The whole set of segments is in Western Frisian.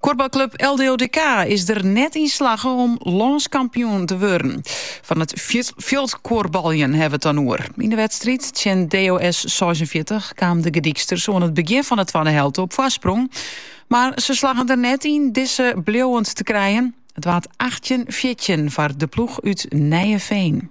Kuorbalklub LDODK is der net yn slagge om lânskampioen te wurden. Fan it fjildkuorbaljen hawwe we it dan oer. Yn de wedstriid tsjin DOS 46 kamen de Gordyksters oan it begjin fan de twadde helte op foarsprong. Mar se slaggen der net yn dizze bliuwend te krijen. It waard 18-14 foar de ploech út Nijeveen.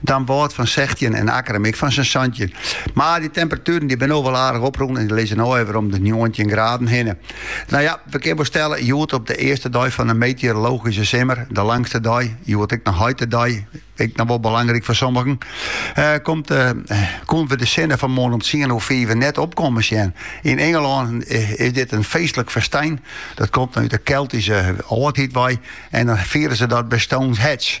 Damwâld fan sechtjin en Akkerum ek fan sa'n santjin. Mar dy temperatueren dy binne al wol aardich oprûn en dy lizze no alwer om de njoggentjin graden hinne. Nou ja, we kinne wol stelle, hjoed op de earste dei fan de meteorologyske simmer, de langste dei, hjoed ek noch heitedei, ek noch wol belangryk foar sommigen, eh, komt, eh, koenen we de sinne fan 'e moarn om tsien oer fiven net opkomme sjen. Yn Ingelân eh, is dit in feestlik festyn. Dat komt út de Keltyske âldheid wei en dan fiere se dat by Stones Hedge.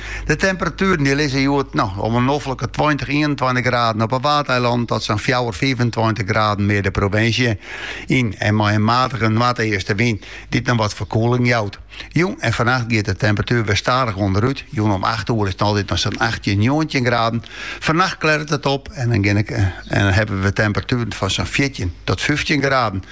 De temperatueren dy lizze hjoed no om 'e noflike tweintich, ienentweintich graden op 'e Waadeilannen tot sa'n fjouwer, fiifentweintich graden mear de provinsje yn en mei in matige noardeastenwyn dy't noch wat ferkoeling jout. Jûn en fannacht giet de temperatuer wer stadich ûnderút, jûn om acht oere is it altyd noch sa'n achttjin, njoggentjin graden. Fannacht klêret it op en dan hawwe we temperatueren fan sa'n fjirtjin tot fyftjin graden.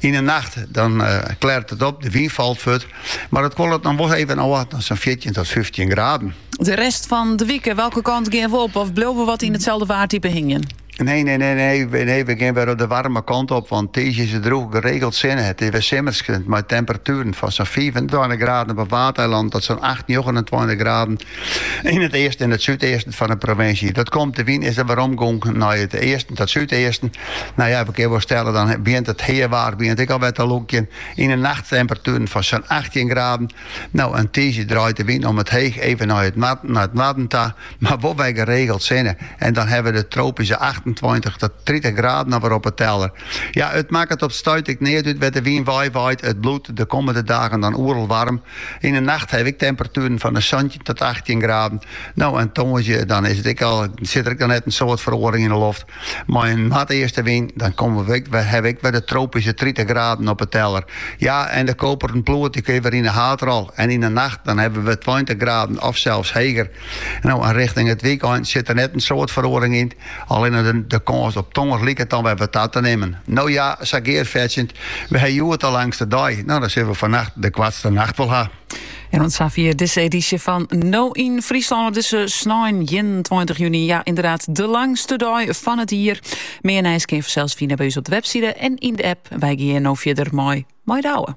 Yn 'e nacht dan klêret it op, de wyn falt fuort, mar it kuolet noch wol even ôf nei sa'n fjirtjin tot fyftjin graden. De rest fan de wike, welke kant gean we op of bliuwe we wat yn itselde waartype hingjen? Nee, nee, nee, nee, nee, we gean wer de waarme kant op, want tiisdei is it drûch, geregeld sinne. It is wer simmersk mei temperatueren fan sa'n fiifentweintich graden op 'e Waadeilannen tot sa'n acht, njoggenentweintich graden Yn it easten en it súdeasten fan de provinsje. Dat komt de wyn is der weromgongen nei it easten tot súdeasten. Nou ja, we kinne wol stelle, dan begjint it heawaar begjint ek al wat te lokjen. Yn de nacht temperatueren fan sa'n 18 graden. Nou, en tiisdei draait de wyn omheech even nei it, nei it noarden ta, mar wol wer geregeld sinne. En dan hawwe we de tropyske 28 tot 30 graden alwer op 'e teller. Ja, it makket op 't stuit ek neat út wêr't de wyn weiwaait. It bliuwt de kommende dagen dan oeral waarm. Yn 'e nacht ha we ek temperatueren fan de santjin tot achttjin graden. No en tongersdei dan is it ek al, sit der ek al net in soad feroaring yn 'e loft. Mei in noardeaste wyn dan komme we ek, hawwe we ek wer de tropyske tritich graden op 'e teller. Ja, en de koperen ploert dy kin wer yn 'e haadrol en yn 'e nacht dan hawwe we tweintich graden of sels heger. No en richting it wykein sit der net in soad feroaring yn. Allinne de kâns op tonger liket dan wer wat ta te nimmen. No ja, sa gearfetsjend, we ha hjoed de langste dei. No, dan sille we fannacht de koartste nacht wol ha. En oant safier dizze edysje fan No yn Fryslân op dizze snein 21 juny. Ja, ynderdaad, de langste dei fan it jier. Mear nijs kin je fansels fine by ús op de webside en yn de app. Wy gean no fierder mei Mei Douwe.